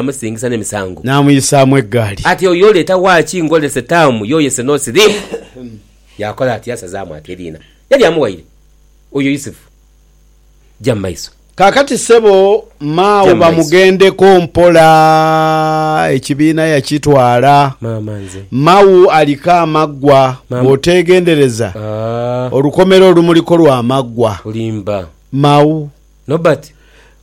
yaamusingisa n'emisango. Naamuyisaamu egaali. Ati oyo leeta waaki ngolese taamu yo yese n'osiriimu. Yaakola ati, yaasazaamu ati eriina lye lyamuwaire oyo Yusufu. Ja mu maiso. Kaakati ssebo Mao bamugendeko mpola. Ekibiina yakitwala. Maama nze. Mao aliko amaggwa. Bw'oteegendereza, olukomera olumuliko lwa maggwa. Olimba. Mao. Nobert.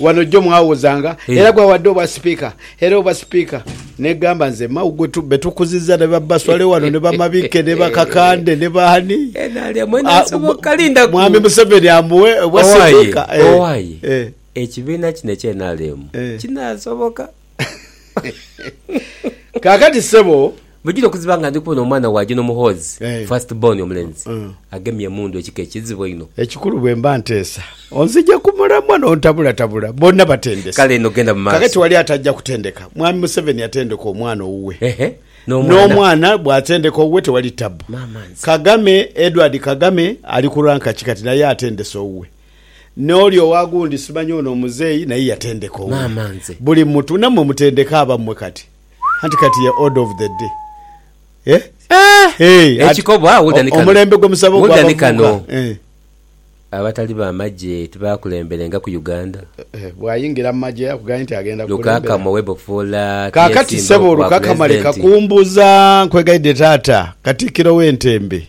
Wano jo mwawozanga era gwawadde obwa sipiika era obwa sipiika negamba nze Mao gwe betukuziza ne ba Baswale wano ne ba Mabikke ne ba Kakande ne ba ani mwami Museveni amuwe obwa sipiika. Owaye ekibiina kino ekye nrm kinasoboka? Kaakati ssebo. Bugira okuziba nga ndi kubona omwana wa Juno Muhoozi, Eh. first born omulenzi, Mm. agemye emundu ekika ekizibu einho. Ekikulu bwe mba nteesa onzigya ku mulamwa n'ontabulatabula bonna batendese. Kale eno genda mu maaso. Kaakati wali atajja kutendeka. Mwami Museveni yatendeka omwana owuwe. Ehe, n'omwana. N'omwana bw'atendeka owuwe tewali ttabu. Maama nze. Kagame, Edward Kagame ali ku ranka ki kati naye atendese owuwe. N'oli owa gundi simanya ono omuzeeyi naye yatendeka owuwe. Maama nze. Buli mutu namwe mutendeke abamwe kati. Anti kati ye order of the day. Eh? Eeh! Hey! At Ekikobo agho wulira ni kano. Omulembe gwe musaba ogwa Wulira ni kano. bavubuka. Eh. Abatali ba magye tibakulemberenga ku Uganda. Eh, bwayingira mu magye akugambye nti agenda kukulembera. Lukakama owebofuula Kaakati tiyesimbagho ssebo ku bwa Lukakama leka Pulezidenti. kumbuza, nkwegaidhe taata Katikkiro w'entembe.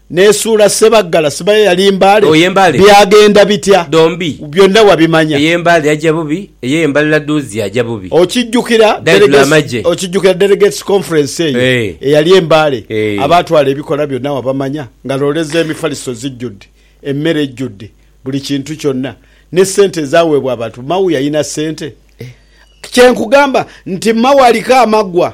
N'esuula Ssebaggala sibayo yali mbale. Oye mbale. Byagenda bitya? Dhombi. Byonna wabimanya. Eye mbale yaja bubi, eye mbalala duuzi yaja bubi. Okijjukira Delegates okijjukira Delegates Conference eyo eyali e Mbale? Abaatwala ebikola byonna wabamanya? Nga loole z'emifaliso zijjudde, emmere ejjudde, buli kintu kyonna. Ne ssente ezaaweebwa abantu. Mao yalina ssente? Kye nkugamba nti Mao aliko amaggwa.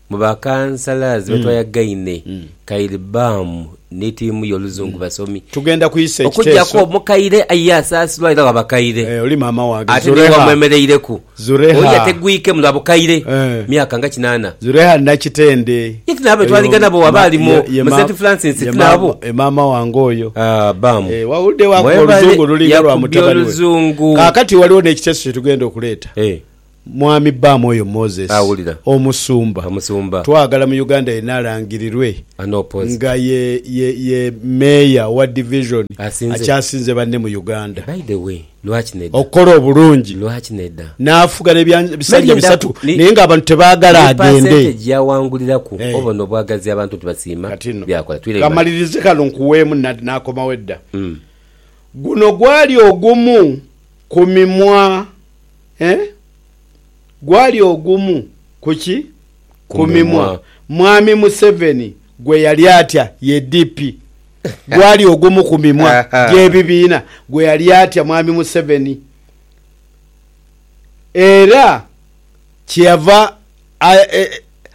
Mu bakansalazi betwayagaine, Kyle Baum ni tiimu ye oluzungu basomi. Tugenda kwisa ekiteeso. Okugyaku omukaire aye asaasilwa era wa bakaire. Eeh oli maama wange. Ate ni wamwemereireku. Zureha. Oyo ategwike mu lwa bukaire myaka nga kinaana. Zureha Nakitende. Ye ti naabo betwaliga nabo waba ali mu St Francis ti naabo? Ye maama wange oyo. Aah Baum. Eeh wawulidde wakuba oluzungu lulinga lwa mutabani we. Mwebale yakubya oluzungu. Kaakati waliwo n'ekiteeso kye tugenda okuleeta. Eeh. Mwami bbaamu oyo Moses Awulira. omusumba Omusumba. twagala mu Uganda yena alangirirwe An opposed. nga ye ye ye mayor owa division Asinze. akyasinze banne mu Uganda By the way, lwaki neda? okukola obulungi Lwaki neda? n'afuga n'ebya- Meli ebisanja endaku bisatu ni- naye ng'abantu tebaagala ni agende. percentage yawanguliraku Eh. oba nobwagazi abantu nti basiima Kati nno byakola twiremu bati. kamalirize kano nkuweemu na- n'akomawo edda. Mm. Guno gwali ogumu ku mimwa Ee, gwali ogumu ku ki? Ku mimwa. Mwami Museveni gwe yali atya ye DP. Gwali ogumu ku mimwa gy'ebibiina gwe yali atya Mwami Museveni. Era kyeyava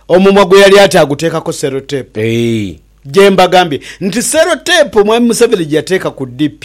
omumwa gwe yali atya aguteekako seroteepu. Gye mbagambye nti seroteepu Mwami Museveni gye yateeka ku DP.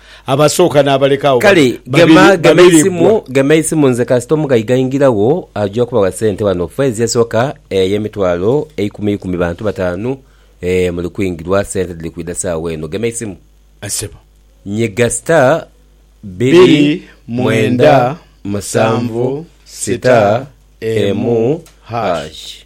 Abasooka n'abaleka agho Kale babiri gema babiri gema babiri eisimu bbwa. gema eisimu nze kasita omugaiga aingiragho aja kubawa sente wano fezi esoka eye mitwalo eikumi ikumi bantu batanu eeh muli kwingirwa sente dhiri kwidha sawa eno gema eisimu Ssebo. nyiga star Bbiri mwenda musanvu sita emu hash.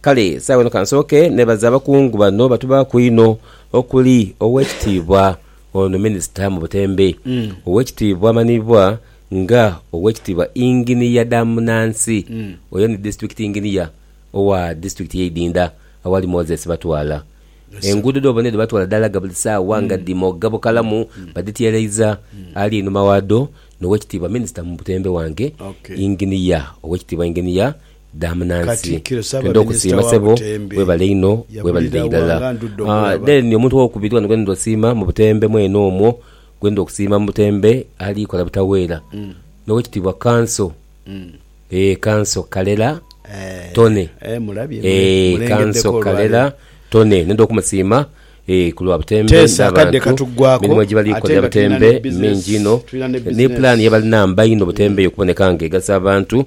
Kale saagho eno ka nsooke neebaze abakungu bano batubaaku einho okuli Oweekitiibwa ono Minisita mu butembe, Oweekitiibwa amanhiibwa nga Oweekitiibwa Inginiya Damunansi, oyo ni Disitulikiti Inginiya owa Disitulikiti y'e Idinda awali Moses Batwala. Enguudo dh'obona edho Batwala dhalaga buli saagha nga dhimoga bukalamu badhityeeleiza. Ali einhuma waadho n'Oweekitiibwa Minisita mu butembe wange, Inginiya, Oweekitiibwa Inginiya, dha munansi twendha okusiima sebo webale inho webalire irala then ni omuntu owokubiri wano gwendha osiima mu Butembe mwene omwo gwendha okusiima mu Butembe ali kola butaweera nowekitiibwa kanso eeh kanso Kalera Tony eeh kanso Kalera Tony nendha okumusiima eeh kulwa Butembe nabantu emirimo ejibali kolera Butembe mingi inho ni plan yebalina mba inho Butembe eyo okuboneka nga egasa abantu.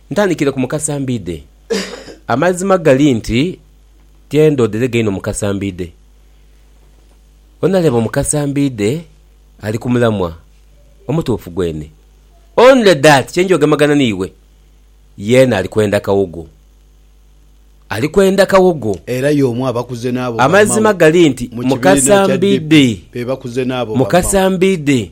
Ntandikire ku Mukasambidde. Amazima gali nti tyendoodere gaino Mukasambidde. Onaleba Omukasambidde ali ku mulamwa omutuufu gwene. Only that kye nja ogemagana n'iwe, yeena ali kwenda kawogo. Ali kwenda kawogo. Era y'omu abakuze n'abo bamao mu kibiina kya DP be bakuze n'abo bamao. Amazima gali nti Mukasambidde, Mukasambidde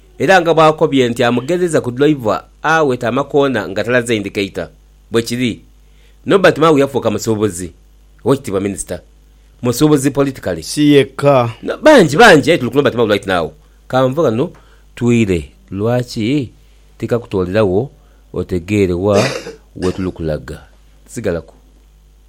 Era nga bw'akobye nti amugheereza ku Dulayiva agho e Tamakoona nga talaze indikeita. Bwe kiri. Nobert Mao yafuuka musuubuzi. Owekitiibwa Minisita. Musuubuzi politically. Si yekka. Na bangi, bangi. Aye tuli ku Nobert Mao right now. Ka nve ghano twire. Lwaki tikakutoolera wo otegeere wa we tuli kulaga? Sigalaku.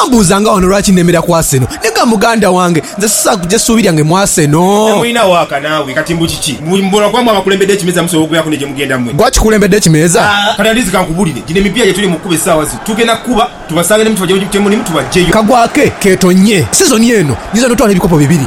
Wambuuza nga wano lwaki nemera ku Arsenal. Nega muganda wange, nze sisobola kuja suubi lyange mu Arsenal. Temulina waaka naawe kati mbu kiki? Mbu mubolo gwammwe abakulembedde ekimeeza musobola okubeeraku ne gye mugenda mmwe? Gwe akikulembedde ekimeeza? Kati Andizi kankubulire, gino emipiira gye tuli mu kukuba essaawa zino tugenda kukuba tubasange ne mutuba gye mulimu tubaggyeyo. Kagwa ke keetonnye sizoni eno. Nyinza n'otwala ebikopo bibiri.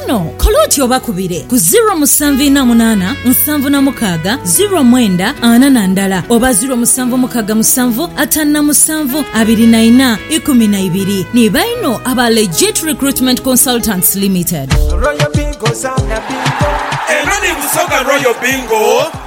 Kino kola oti obakubire ku ziro musanvu ina munana nsanvu na mukaaga ziro mwenda ana na ndala oba ziro musanvu mukaaga musanvu atanu na musanvu abiri na ina ikumi na ibiri. Ni baino aba Legit Recruitment Consultants Limited. Royal Bingo, Zana Bingo. Eno ni Busoga Royal Bingo.